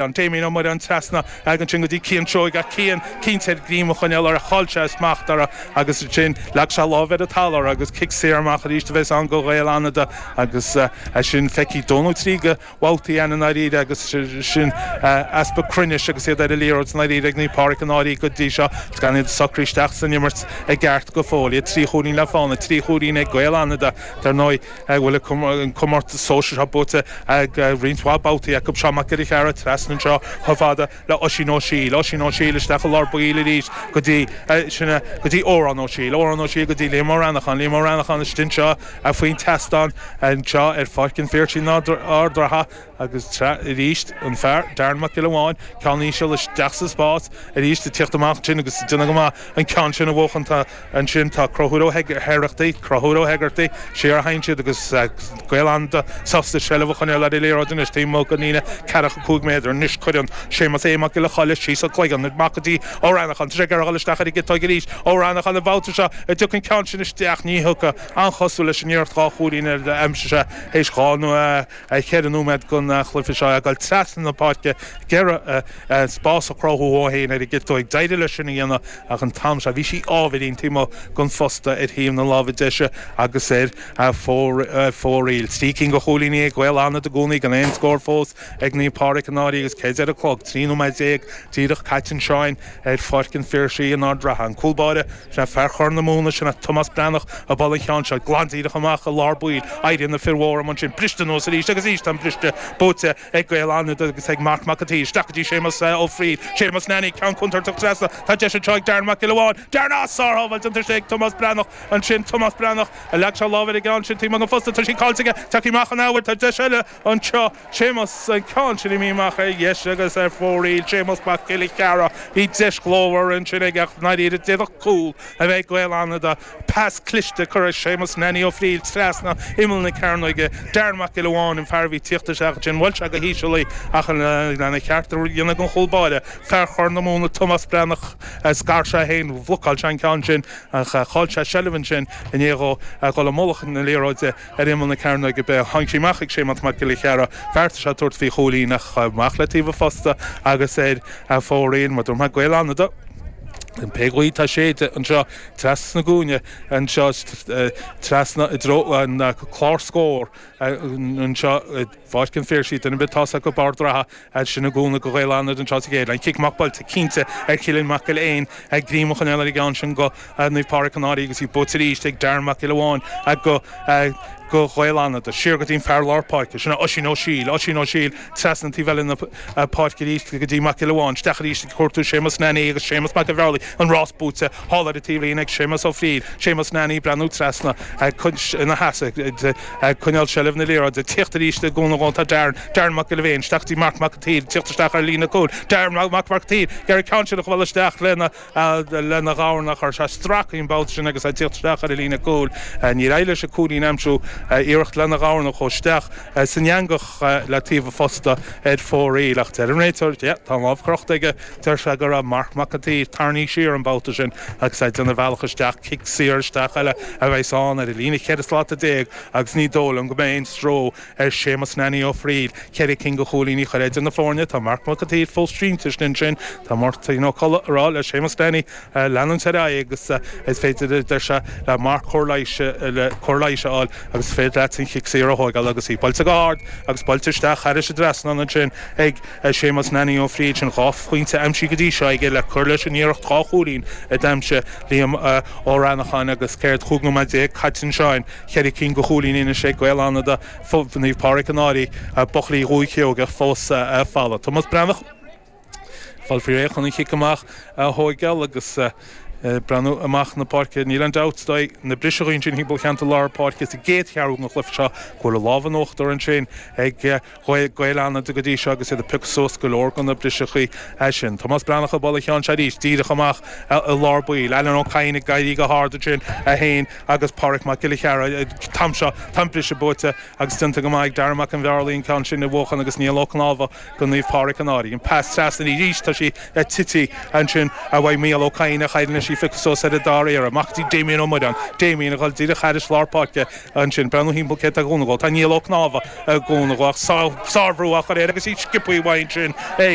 An Téamín Ó Muireáin trasna ansin go dtí Cian Seoighe, ach Cian cinnte air greim a choinneáil uirthi, chaill sé smacht uirthi, agus ansin leag sé láimh ar an talamh agus cic saor amach arís a bhéas ann go Ghaeil Fhánada agus ansin feicthe dhó nó trí de bhabhtaí againn i ndáiríre agus ansin easpa cruinnis agus iad ar an liathróid i ndáiríre ag Naomh Pádraig i ndáiríre go dtí seo agus gan iad socraithe isteach san imirt i gceart go fóill, iad trí chúilín le fána, trí chúilín ag Gaeil Fhánada dar ndóigh. go bhfuil an comórtas sóisearach buaite roinnt mhaith babhtaí acu. Seán Mac Giolla Chearra trasna anseo chomh fada le Oisín Ó Siadhail, Oisín Ó Siadhail isteach i lár baill arís go dtí, sin é, go dtí Odhrán Ó Siadhail, Odhrán Ó Siadhail go dtí Liam Ó Reanacháin, Liam Ó Reanacháin istigh anseo faoin tseastán anseo ar Pháirc an Phiarsaigh in Ard an Rátha. agus arís an fear, Darren Mac Giolla Bháin, ceann íseal isteach sa spás, arís ag tíocht amach ansin agus ag déanamh go maith an ceann sin a bhuachan. Ansin tá Crochúr Ó hÉigeartaigh, Crochúr Ó hÉigeartaigh, siar a théann siad agus Gaeil Fhánada sásta seilbh a choinneáil ar an liathróid anois taobh amuigh den líne ceathracha cúig méadar. Anois cuireann Séamus Aodh Mac Giolla Choille síos a chloigeann amach go dtí Ó Reanacháin. Tá sé ag gearradh isteach ar an gciotóig arís. Ó Reanacháin an babhta seo an dtiocfaidh an ceann sin isteach. Ní thiocfaidh. An-chosúil leis an iarracht dhá chúilín a d'aimsigh sé théis dhá nó. 4 nóiméad den chluiche seo, ag dul trasna na páirce, ag iarraidh spás a chruthú dhó féin ar an gciotóig. D'éirigh leis sin a dhéanamh ach an t-am seo bhí sí ábhairín taobh amuigh den phosta ar thaobh na láimhe deise agus ar fóraoil. Trí cinn de chúilíní ag Gaeil Fhánada i gcónaí gan aon scór fós ag Naomh Pádraig i ndáiríre agus céard a deir an clog, 13 nóiméad, díreach caite ansin ar Pháirc an Phiarsaigh in Ard an Rátha. An cúlbáire. Is é fear Chorr na Móna sin, Tomás Breathnach, ag bualadh an cheann seo, glan díreach amach i lár baill. Éiríonn na fir mhóra amuigh ansin, briste anuas arís agus arís, tá an briste buaite ag Gaeil Fhánada agus ag Marc Mac an tSaoir. Isteach go dtí Séamas Ó Fríl, Séamas Nanny, ceann contúirteach trasna. Tá deis anseo ag Darren Mac Giolla Bháin. Dearna! Sárshábháilt déanta anseo ag Tomás Breathnach ansin. Tomás Breathnach, a leag sé lámh ar an gceann sin, taobh amuigh den phosta, tá sí caillte aige. Tagtha amach an athuair, tá deis eile. anseo, Séamus an ceann sin imithe amach ar dheis agus ar fóraoil, Séamus Mac Giolla Chearra, bhí deis ghlórmhar ansin aige ach i ndáiríre d'fhéadfadh cúl a bheith ag Gaeil Fhánada, pas cliste curtha ag Séamus Nanny Ó Fríl trasna imeall na cearnóige, Darren Mac Giolla Bháin an fear a bhí tíocht isteach ansin, bhuail sé go híseal í ach lena cheart a dhéanamh don chúl báire, fear Chorr na Móna Tomás Breathnach, scar sé féin, bhlocáil sé an ceann sin ach chaill sé seilbh ansin i ndiaidh dhó a dhul i mullach na liathróide. Ar imeall na cearnóige bige tháinig sí amach ag Séamas Mac Giolla Chearra. Bheartaigh sé tabhairt faoi chúilín ach ghabh amach le taobh a phosta agus ar fóraoil. Maidir le Gaeil Fhánada, pé gaoth atá ag séideadh anseo trasna ón gcúinne anseo trasna i dtreo an chlár scór anseo i. Fáisc an fear sí, duine ar bith atá acu, bárr dradha, fhad sin i gcúnamh do Ghaeil Fhánada an tráth sa gcéadna, cic amach buailte cinnte ar Chillian Mac Giolla Eáin greim a choinneál ar an gceann sin do Naomh Pádraig an Fhairche, agus í buaite arís ag Darren Mac Giolla Bhéin, a go, a do Ghaeil Fhánada, siar go dtí'n fear lár páirce, sin é Oisín Ó Siail, Oisín Ó Siail, treasna an taobh eile na páirce arís go dtí Mac Giolla Bhéin, 'steach arís ag cuartú Séamus Nannaí agus Séamus mac a' Bheárlaigh, an rás buaite, thall ar a taobhlíne ag Séamus Ó Fríl, Séamus Nannaí breathnú treasna, ag caint ina sheasamh, ag coinneáil seilbh na liathróide, teacht arís le cúnamh dhó tá Darren, Darren Mac Giolla Bhéin, isteach go dtí Marc Mac an tSaoir, teacht isteach ar líne cúil Darren, Marc Mac an tSaoir, ag iarraidh an ceann sin a bhualadh isteach lena dhorna a chur sé stracfaidh an babhta sin agus é ag teacht isteach ar an líne cúil, níor éirigh leis an cúilín a aimsiú, iarracht lena dhorna chuaigh isteach san eangach le taobh an phosta ar fóraoil ach deir an réiteoir yeah tá an lámh crochta aige, deir sé go raibh Marc Mac an tSaoir, tarraingthe siar an babhta sin agus é ag déanamh a bhealach isteach. cic saor isteach eile a bheas ann ar an líne cheithre slata déag agus ní dóigh liom go mbeidh aon stró ar Shéamus Nanny Ó Fríl ceithre cinn de chúilíní a chur idir na foirne. Tá Marc Mac a tSaoir fós sínte sin ansin. Tá Máirtín Ó Colla ag rá le Séamus Nanny leanúint ar aghaidh agus is féidir, a deir sé, le Marc cóir leighis a fháil agus is féidir leat an chic saor a thógáil agus í buailte go hard agus buailte isteach thairis an trasnán ansin ag Séamus Nanny Ó Frighil sin dhá phointe aimsithe go dtí seo aige le cur leis an iarracht dhá chúilín a d'aimsigh Liam Ó Reanacháin agus céard chúig nóiméad déag caite ansin, ceithre cinn de chúilíní anois ag Gaeil Fhánada, Naomh Pádraig an Fhairche, buachaillí Dhúiche Sheoigheach fós folamh. Tomás Breathnach ag fáil faoi réir chun an chic amach a thóigeáil agus breathnú amach na páirce. Níl aon dabht dó na briseadh ansin thimpeall cheantar lár páirce sa gcéad cheathrú den chluiche seo go bhfuil an lámh in uachtar ansin ag Ghaeil, Gaeil Fhánada go dtí seo agus iad ag piocadh suas go leor de na briseachaí sin. Tomás Breathnach ag bualadh an cheann seo arís, díreach amach i lár baill. Alan Ó Cadhain ag éirí go hard ansin, é féin agus Pádraig Mac Giolla Chearra. Tá an, tá an briseadh buaite agus déanta go maith ag Darragh Mac an Bheárlaí an ceann sin a bhuachan agus Niall Ó Cnámha do Naomh Pádraig an Fhairche. An pas trasna arís, tá sí tití ansin uaidh Micheál Ó Cadhain ach éiríonn leis í a phiocadh suas ar an dara hiarraidh. Amach go dtí Damien Ó Muireáin. Damien ag dhul díreach thairis lár páirce. Ansin, breathnú thimpeall, cé atá ag cúnamh dhó? Tá Niall Ó Cnámha i gcúnamh dhó, ach sárbhrú á chur air agus í sciobthaí uaidh ansin é.